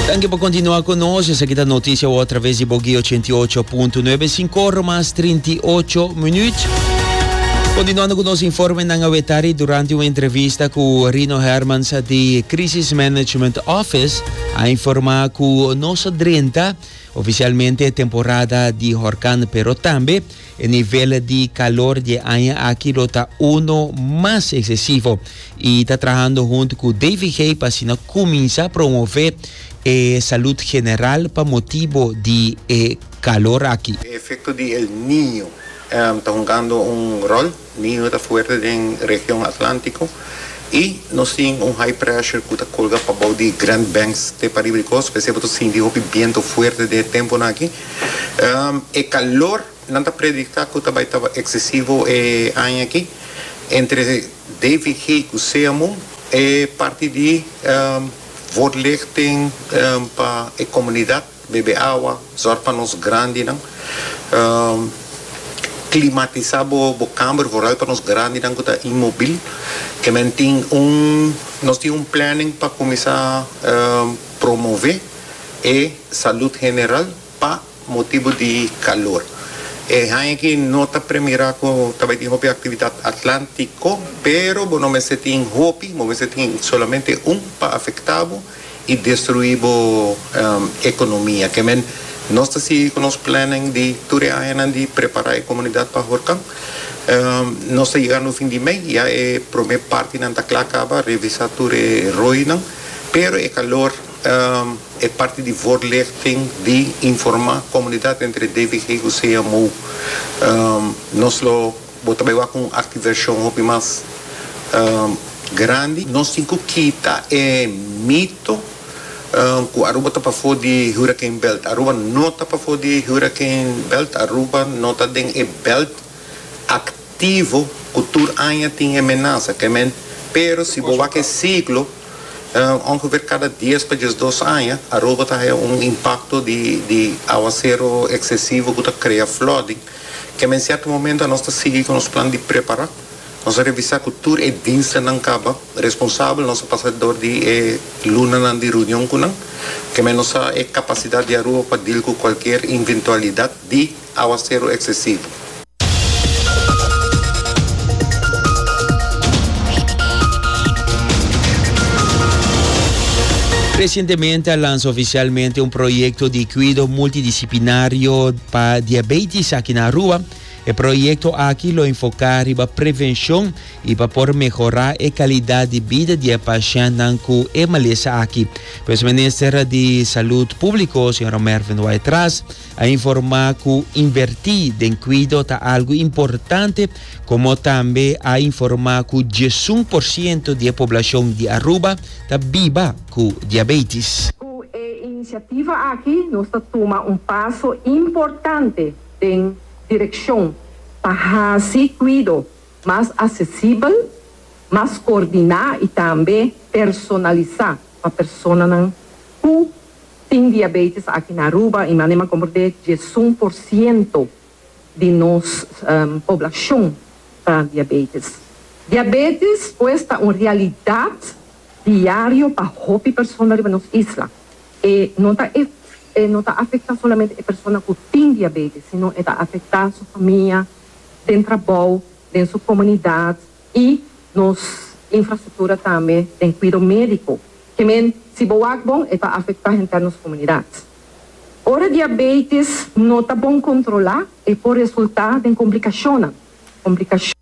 Danki pa kontinua ku nos. Esaki ta Notisia Wou atraves di Bogey 88.9, sinko ora mas trinti ocho minut. Kontinuando ku nos informenan a wetari durante un entrevista ku Rino Hermans di Crisis Management Office a informá ku nos a drenta ofisialmente e temporada di horkan pero tambe E nivel di calor dje aña aki lo ta uno mas excesivo y ta trahando hunt cu DVG pa asina cuminsa promove e salud general pa motibo di e calor aki. E efecto di El Niño ta jungando un rol? Niño ta fuerte den region Atlantico y nos tin un high pressure cu ta colga pa bao di Grand Banks te pariba di cos, p'esey bo ta sinti hopi biento fuerte den e temponan aki. E calor nan ta predicta cu ta bay taba excesivo e aña aki, entre David Haigh cu Sea Moon e parti di Vorlichting pa e comunidad. Bebe awa, zòrg pa nos grandinan. Klimatisá bo kamber, vooral pa nos grandinan ku ta inmobil. E men tin un, nos tin un planning pa kuminsá promové e salud general pa motibu di kalor. E haña aki no ta premirá ku ta bai tin hopi aktividat atlántiko, pero bo no mester tin hopi, bo mester tin solamente un pa afektá bo. y destrui bo economia. Ke men nos ta sigui cu nos planning di tur e añanan di prepara e comunidad pa Horcan. Nos ta yegando fin di mei, ya e prome partinan ta cla caba, revisa tur e roynan, pero e calor e parti di voorlichting di informa comunidad entre DVG cu CMO. Nos lo. Bo ta bai wak un artiversion hopi mas grandi. Nos tin ku kita e mito ku Aruba ta pafó di huraken belt. Aruba no ta pafó di huraken belt. Aruba no ta den e belt aktivo ku tur aña tin e menasa. Pero si bo wak e siglo, ongever kada dies pa diesdos aña Aruba ta haña un impakto di awasero eksesivo ku ta krea flòding. Kende en sierto momento a nos ta sigui cu nos plan di prepara, nos a revisa cu tur e dienstennan caba responsabel, nos a pasa door di e lunanan di reunion cu nan, kende nos sa e capacidad di Aruba pa deal cu cualkier inventualidad di aguacero excesivo. Recientemente a lansa oficialmente un proyecto di cuido multidisciplinario. Pa diabetis aki na Aruba, e proyekto aki lo enfoká riba prevenshon i pa por mehorá e kalidat di bida di e pashentnan ku e malesa aki. Pues Minister di Salud Públiko, señora Mervin Waitras, a informá ku invertí den kuido ta algu importante komo tambe a informá ku diesun por siento di e poblashon di Aruba ta biba cu diabetis. Cu e iniciativa aki nos ta tuma un paso importante den direccion pa haci cuido mas accesibel, mas coordina y tambe personalisa pa personanan cu tin diabetis aki na Aruba y manera comporde diesun por ciento di nos poblacion ta diabetis. Diabetis pues ta un realidad. diario pa hopi persona riba nos isla. E no ta e e no ta afecta solamente e persona cu tin diabetes sino e ta afecta su famia, den trabou, den su comunidad y nos infrastructura tambe den cuido medico. Ke men si bo wak bon e ta afecta henter nos comunidad. Ora diabetes no ta bon controla e por resulta den complicacionnan. Complicacionnan.